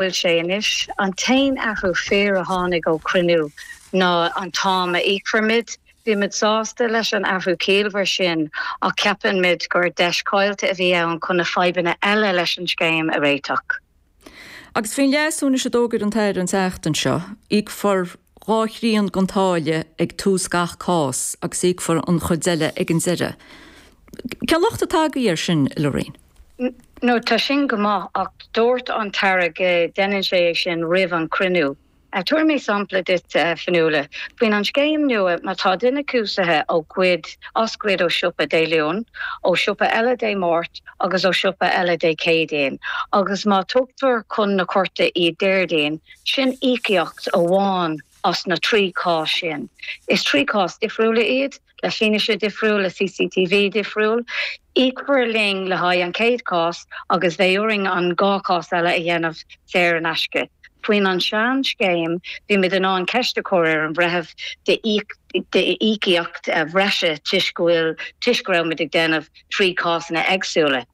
bhfuil sé anois. An t-aon athrú fíor a tháinig ó chruinniú ná an t-am a íocfar muid. Bhí muid sásta leis an athrú ciallmhar sin ach ceapann muid gur deis chaillte a bhí ann chun na fadhbanna eile leis an scéim a réiteach. Agus faoin leasú anois a d'fhógair an tAire an tseachtain seo, íocfar dhá thrian den táille ag tús gach cás agus íocfar an chuid eile ag an deireadh. Cén locht atá agaibh air sin i ndáiríre? Nó tá sin go maith, ach dúirt an tAire go ndéanann sé é sin roimh an chruinniú. Tabharfaidh mé sampla duit, a Fionnuala. Faoin an scéim nua, má tá duine cúisithe ó goid, as goid ó siopa Dé Luain, ó siopa eile Dé Máirt agus ó siopa eile Dé Céadaoin, agus má tugtar chun na cúirte iad Déardaoin, sin íocaíocht amháin as na trí chás sin. Is trí chás difriúla iad. le fianaise difriúil, le CCTV difriúil. Íocfar linn le haghaidh an chéad chás agus bheidh orainn an dhá chás eile a dhéanamh saor in aisce. Faoin an sean scéim, bhí muid in ann ceist a chur ar an Bhreitheamh de íocaíocht bhreise toisc go bhfuil, toisc go raibh muid ag déanamh trí chásanna éagsúla.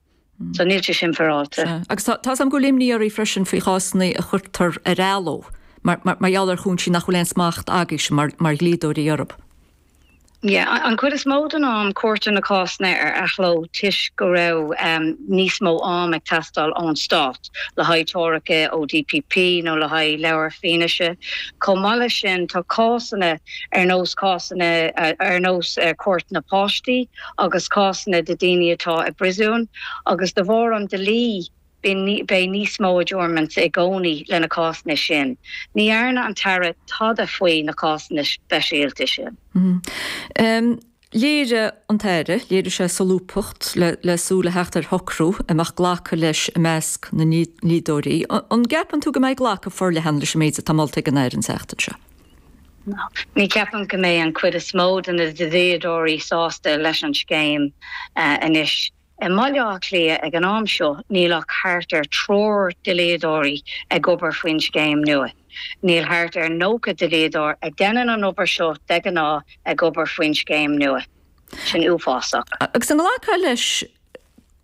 So níl sé sin fearáilte. Agus tá a fhios agam go bhfuil imní oraibh freisin faoi chásanna a chuirtear ar athló mar gheall ar chúinsí nach bhfuil aon smacht agaibhse mar dhlíodóirí orthu. Yeah, an chuid is mó den am cuirtear na cásanna ar athló toisc go raibh níos mó am ag teastáil ón Stát le haghaidh treoracha ó DPP nó le haghaidh leabhar fianaise. Chomh maith leis sin, tá cásanna ar nós cásanna ar nós Cúirt na bPáistí, agus cásanna de daoine atá i bpríosún agus de bharr an dlí beidh níos mó adjournments i gcónaí le na cásanna sin. Ní dhearna an tAire tada faoi na cásanna speisialta sin. Léirigh an tAire, léirigh sé solúbthacht le súil a theacht ar shocrú a mbeadh glacadh leis i measc na ndlíodóirí. An gceapann tú go mbeidh glacadh forleathan leis an méid atá molta ag an Aire an tseachtain seo? Ní cheapaim go mbeidh an chuid is mó de na dlíodóirí sásta leis an scéim anois. I mBaile Átha Cliath ag an am seo níl ach thart ar triúr dlíodóirí ag obair faoin scéim nua. Níl thart ar 90 dlíodóir a déanann an obair seo de ghnáth ag obair faoin scéim nua. Sin uafásach. Agus an nglacfá leis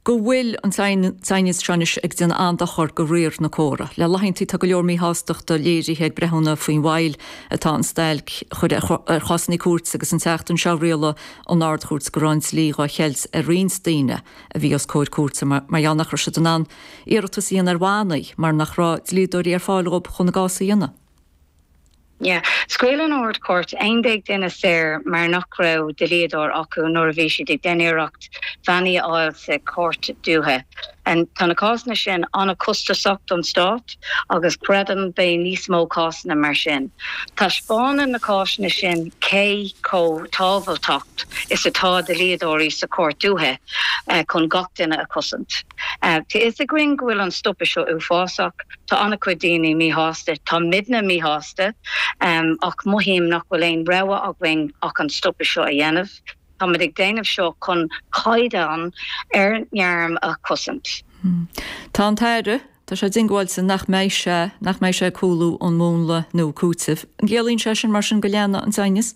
go bhfuil an t-aighneas seo anois ag déanamh an-dochar go riar na córa. Le laethanta tá go leor míshástachta léirithe ag breithiúna faoin bhail atá an stailc a chur ar chásanna cúirte agus an tseachtain seo rialaigh an Ard-Chúirt go raibh an dlí dhá cheilt ar roinnt daoine a bhí os comhair cúirte mar gheall nach raibh siad in ann iarratas a dhéanamh ar bhannaí mar nach raibh dlíodóirí ar fáil dhóibh chun a gcás a dhéanamh. Yeah. Scaoil an Ard-Chúirt 11 duine saor mar nach raibh dlíodóir acu nuair a bhí siad ag déanamh iarracht bannaí a fháil sa Chúirt Dúiche. Tá na cásanna sin an-costasach don Stát agus creidim beidh níos mó cásanna mar sin. Taispeánann na cásanna sin cé chomh tábhachtach is atá dlíodóirí sa Chúirt Dúiche chun gach duine a chosaint. Tá fhios againn go bhfuil an stopadh seo uafásach. Tá an-chuid daoine míshásta. Táimidne míshásta. Ach mothaím nach bhfuil aon rogha againn ach an stopadh seo a dhéanamh. Táimid ag déanamh seo chun caighdeán ár ngairm a chosaint. Tá an tAire, tá sé diongbháilte nach mbeidh sé, nach mbeidh sé ag cúlú ón múnla nua cúitimh. An gciallaíonn sé sin mar sin go leanfaidh an t-aighneas?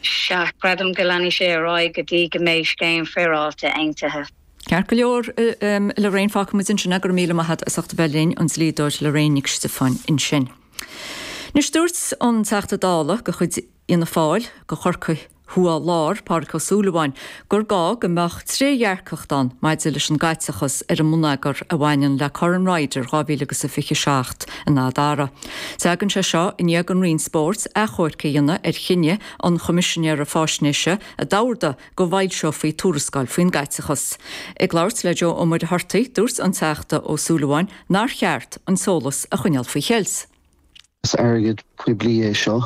Sea, creidim go leanfaidh sé ar aghaidh go dtí go mbeidh scéim féaráilte aontaithe. Ceart go leor, Lorraine, fágfaidh muid ansin é, go raibh míle maith agat as ucht a bheith linn, an dlíodóir Lorraine Nic Stiofáin ansin. Anois dúirt an Teachta Dála de chuid Fhianna Fáil do Chorcaigh Thuaidh Lár, Pádraig Ó Súilleabháin, gur gá go mbeadh trédhearcacht ann maidir leis an gcaiteachas ar an mbonneagar a bhaineann le Corn Ryder 2027 in Adare. Tagann sé seo i ndiaidh an Roinn Spóirt achomharc a dhéanamh ar chinneadh an Choimisinéara Faisnéise a d'ordaigh go bhfoilseofaí tuarascáil faoin gcaiteachas. Ag labhairt le Joe Ó Muircheartaigh, dúirt an Teachta Ó Súilleabháin nár cheart an t-eolas a choinneáil faoi cheilt. Is airgead poiblí é seo.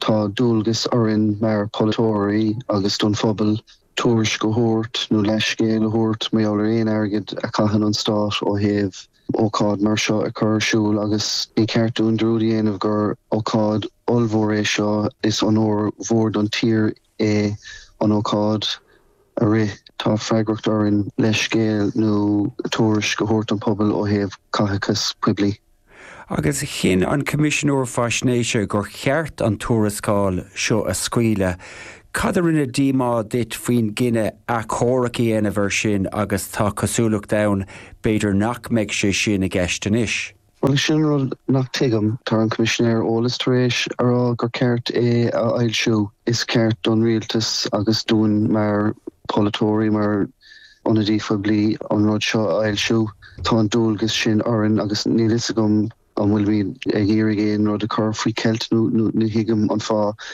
Tá dualgas orainn mar pholaiteoirí agus don phobal tuairisc a thabhairt nó leithscéal a thabhairt mar gheall ar aon airgead a chaitheann an Stát ó thaobh ócáid mar seo a chur ar siúl agus ní ceart dúinn dearúd a dhéanamh gur ócáid ollmhór é seo is onóir mhór don tír é an ócáid a rith. Tá freagracht orainn leithscéal nó tuairisc a thabhairt don phobal ó thaobh caitheachas poiblí. agus chinn an Coimisinéir Faisnéise gur cheart an tuarascáil seo a scaoileadh. Cad a rinne díomá duit faoin gcinneadh achomharc a dhéanamh air sin agus tá cosúlacht ann b'fhéidir nach mbeidh sé sin i gceist anois? Bhuel, sin an rud nach tuigim. Tá an Coimisinéir Eolas tar éis a rá gur ceart é a fhoilsiú. Is ceart don Rialtas agus dúinn mar pholaiteoirí, mar ionadaí phoiblí, an rud seo a fhoilsiú. Tá an dualgas sin orainn agus níl fhios agam an bhfuilimid ag iarraidh aon rud a chur faoi cheilt nó ní thuigim an fáth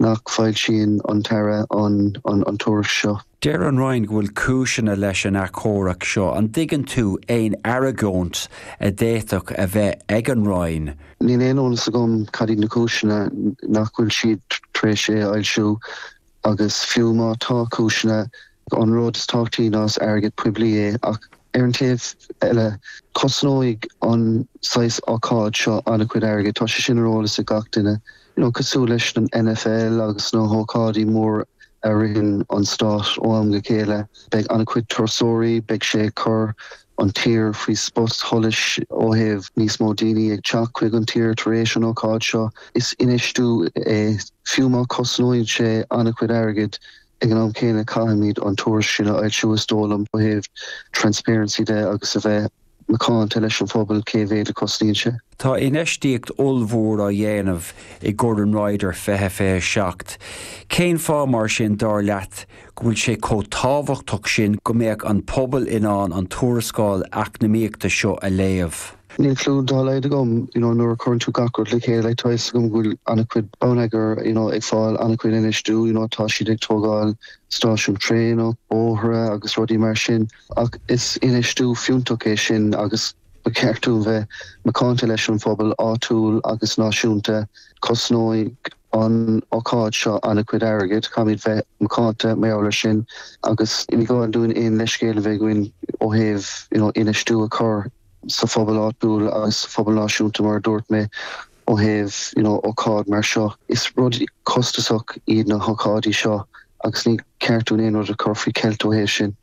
nach foilsíonn an tAire an tuairisc seo. Deir an Roinn go bhfuil cúiseanna leis an athchomharc seo. An dtuigeann tú aon argóint a d'fhéadfadh a bheith ag an Roinn? Níl aon eolas agam cad iad na cúiseanna, mar nach bhfuil siad tar éis é a fhoilsiú? Agus fiú má tá cúiseanna, an rud is tábhachtaí ná is airgead poiblí é. Ach ar an taobh eile, cosnóidh an saghas ócáid seo an-chuid airgid. Tá sé sin ar eolas ag gach duine. nó cosúil leis an NFL agus na hócáidí móra a reáchtálann an stát ó am go chéile, beidh an-chuid turasóirí, beidh sé ag cur an tír faoi spot sholais ó thaobh níos mó daoine ag teacht chuig an tír tar éis an ócáid seo. Is infheistiú é, fiú má chosnaíonn sé an-chuid airgid. Ag an am céanna caithfimid an tuairisc sin a fhoilsiú is dóigh liom ó thaobh transparency de agus a bheith. macánta leis an phobal cé mhéad a chosnaíonn sé. Tá infheistíocht ollmhór á dhéanamh i gCorn Ryder 2027. Cén fáth mar sin, dar leat, go bhfuil sé chomh tábhachtach sin go mbeadh an pobal in ann an tuarascáil eacnamaíochta seo a léamh? Níl clú dá laghad agam. You know nuair a chuireann tú gach rud le chéile tá fhios agam go bhfuil an-chuid bonneagar you know ag fáil an-chuid infheistiú you know tá siad ag tógáil stáisiún traenach, bóithre agus rudaí mar sin. Ach is infheistiú fiúntach é sin agus ba cheart dúinn bheith macánta leis an phobal áitiúil agus náisiúnta. Cosnóidh an ócáid seo an-chuid airgid, caithfimid bheith macánta mar gheall air sin agus ní gá dúinn aon leithscéal a bheith againn ó thaobh infheistiú a chur sa phobal áitiúil agus sa phobal náisiúnta mar a dúirt mé ó thaobh ócáid mar seo. Is rud costasach iad na hócáidí seo agus ní cheart dúinn aon rud a chur faoi cheilt ó thaobh sin.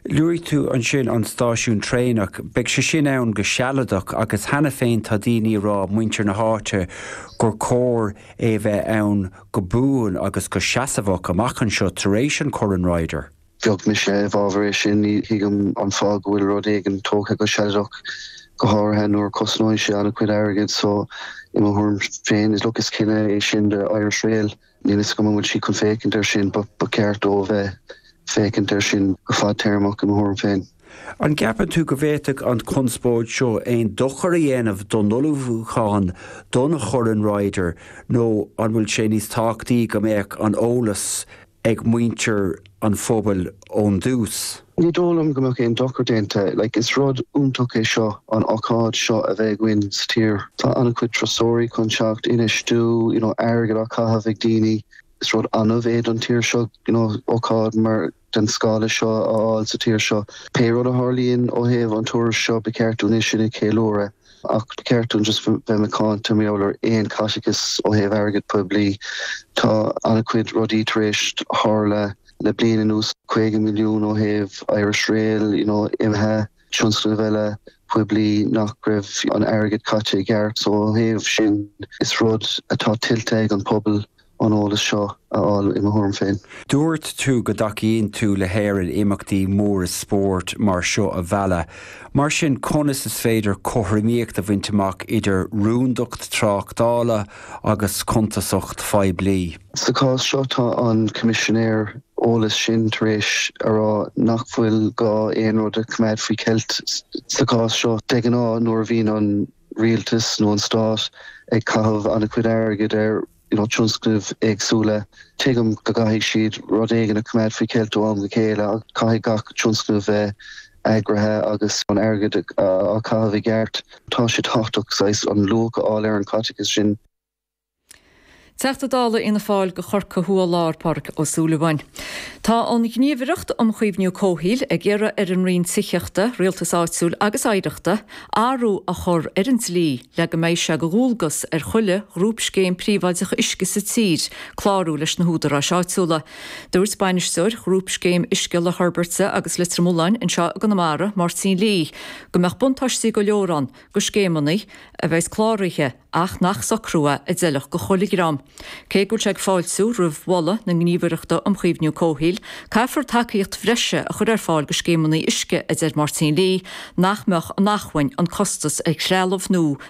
Luaigh tú ansin an stáisiún traenach. Beidh sé sin ann go sealadach agus cheana féin tá daoine ag rá, muintir na háite, gur chóir é a bheith ann go buan agus go seasmhach amach anseo tar éis an Chorn Ryder. Bheadh mise i bhfabhar air sin. Ní thuigim an fáth go bhfuil rud éigin tógtha go sealadach, go háirithe nuair a chosnóidh sé an-chuid airgid. So, i mo thuairim féin, is look is cinneadh é sin do Irish Rail. Níl a fhios agam an bhfuil sí chun féachaint air sin, ba cheart dó a bheith ag féachaint air sin go fadtéarmach, i mo thuairim féin. An gceapann tú go bhféadfadh an chonspóid seo aon dochar a dhéanamh don ullmhúchán don Chorn Ryder nó an bhfuil sé níos tábhachtaí go mbeadh an eolas ag muintir an phobail ón dtús. Ní dóigh liom go mbeadh aon dochar déanta. Like, is rud iontach é seo, an ócáid seo a bheith againn sa tír. Tá an-chuid turasóirí chun teacht, infheistiú, you know, airgead á chaitheamh ag daoine. Is rud annamh é don tír seo, you know, ócáid mar, den scála seo a fháil sa tír seo. Pé rud a tharlaíonn ó thaobh an tuairisc seo, ba cheart dúinn é sin a cheiliúradh. Ach ba cheart dom just bheith macánta mar gheall ar aon chaiteachas ó thaobh airgid phoiblí. Tá an-chuid rudaí tar éis tarlú le bliain anuas, 50 milliún ó thaobh Irish Rail, you know imithe, tionscnaimh eile poiblí nach raibh an airgead caite i gceart. So ó thaobh sin, is rud atá tuillte ag an bpobal. an eolas seo a fháil i mo thuairim féin. Dúirt tú go dtacaíonn tú le hÉirinn imeachtaí móra spóirt mar seo a mhealladh. Mar sin, conas is féidir cothromaíocht a bhaint amach idir rúndacht tráchtála agus cuntasacht phoiblí? Sa chás seo, tá an Coimisinéir Eolais ansin tar éis a rá nach bhfuil gá aon rud a choimeád faoi cheilt sa chás seo. De ghnáth, nuair a bhíonn an rialtas nó an stát ag caitheamh an-chuid airgid ar. tionscnaimh éagsúla. Tuigim go gcaithfidh siad rud éigin a choimeád faoi cheilt ó am go chéile agus caithfidh gach tionscnamh bheith eagraithe agus an airgead á chaitheamh i gceart. Tá sé tábhachtach saghas an luach a fháil ar an gcaiteachas sin. Teachta Dála Fhianna Fáil do Chorcaigh Thuaidh-Lár, Pádraig Ó Súilleabháin. Tá an Ghníomhaireacht um Chaomhnú Comhshaoil ag iarraidh ar an Roinn Tithíochta, Rialtais Áitiúil agus Oidhreachta athrú a chur ar an dlí, le go mbeidh sé de dhualgas ar chuile ghrúpscéim príobháideach uisce sa tír clárú leis na húdaráis áitiúla. Dúirt Bainisteoir Ghrúpscéim Uisce Loch Hoirbeaird agus Leitir Mealláin anseo i gConamara, Máirtín Lee, go mbeadh buntáistí go leor ann do scéimeanna a bheas cláraithe ach nach socrú é a d'fheilfeadh do chuile dhream. Cé go bhfuil sé ag fáiltiú roimh mholadh na Gníomhaireachta um Chaomhnú Comhshaoil, caithfear tacaíocht bhreise a chur ar fáil do scéimeanna uisce a deir Máirtín Lee nach mbeadh in acmhainn, an costas ar threalamh nó na.